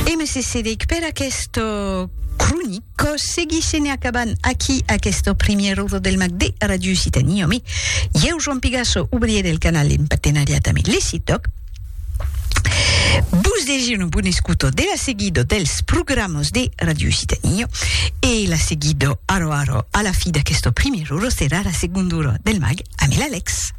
E me cessede'c per aquesta cronica. Seguisse ne acabant aquí aquesta primièra ora del mag de Radio Occitania. Me, ieu Joan Pigasso, obrier del canal en partenariat ame Lecitoc, vos desir una bona escuta de la seguida dels programas de Radio Occitania e la seguida ara ara a la fi d'aquesta primièra ora serà la segonda ora del mag ame l'Alex.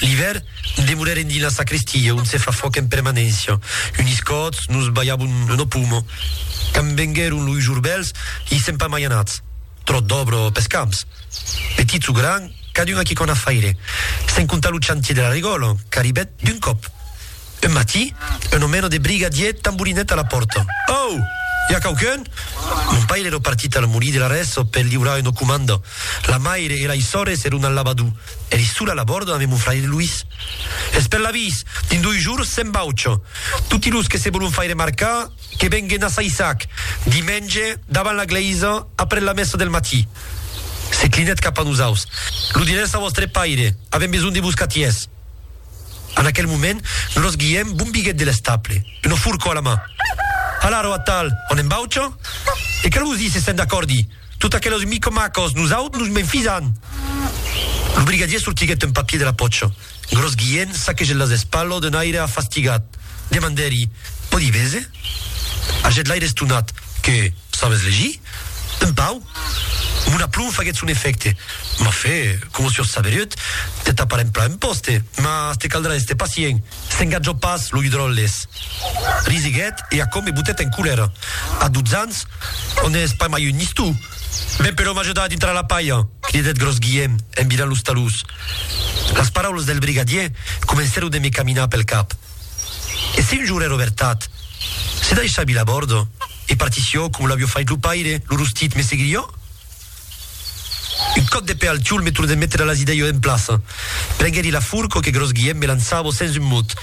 L'ivèr, demorèrem dins la sacristia, ont se fa fòc en permanéncia. Unis còts, nos balhavon lo pomo. Quand venguèron loi jours bèls, i sèm pas mai anats. Tròt d'òbra pes camps. Petits o grands, cadun a quicòna faire. Sens comptar lo chantier de la regòla, qu'arribèt d'un còp. Un matí, un omèno de briga dièt tamborinèt a la pòrta. Au! I a quauqu'un? Mon paire ero partit al molí de la Rèso per liurar una comanda. La maire e lai sòrres eron al lavadou. Eri sola a la bòrda ave mon fraire Luís. Es per l'avís! Dins doi jours se'n vaucha. Toti los que se volon faire marcar, que venguen a Saissac, dimenge, davant la glèisa, après la messa del matí. Se clinèt cap a nosaus. Lo dirètz a vòstre paire. Avem besonh de vos catièrs. En aquel moment, gros Guièm bombiguèt de l'estable, una forcò a la man. Hala, rò atal, on en baucha? E Calosi se sent acòrdi, Tot aquelos micomacos, nosaut nos m'enfisan! Lo brigadier sortiguèt un papier de la pòcha. Gros Guièm saquegèt las espalhos d'un aire afastigat. Demandèri, Pòdi véser? Agèt l'aire estonat, Que, sabes legir? Un pauc, mon aplomb faguèt son efècte. M'a fait, coma sur Saveruet, te tapar en plan un pòste, mas te caldrà èster pacient. S'engatjò pas, lo Hidròles. Risiguèt e aquò me botèt en colèra. A dotze ans, o n'ès pas mai un nistou? Ven però m'ajudar a dintrar la palha! cridèt Gròs Guièm en virant los talús. Las paraulas del brigadier comencèron de me caminar pel cap. E se un jour èra vertat? Se daishar vilabordo? E partició, com l'avió fait lo paire, lo rostit me seguirió? Un còp de pè al tiol me tornèt metre las idèios en plaça. Prengèri la furco que Gròs Guièm me lançavo sens un mot.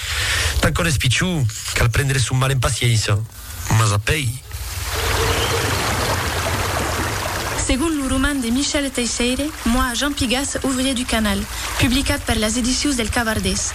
Tant qu'òn es pichon, cal prendre son mal en paciéncia. Mas apèi. Segon lo roman de Michel Teisseire, Moi, Jean Pigas, ouvrier du canal, publicat per las Edicions del Cavardés,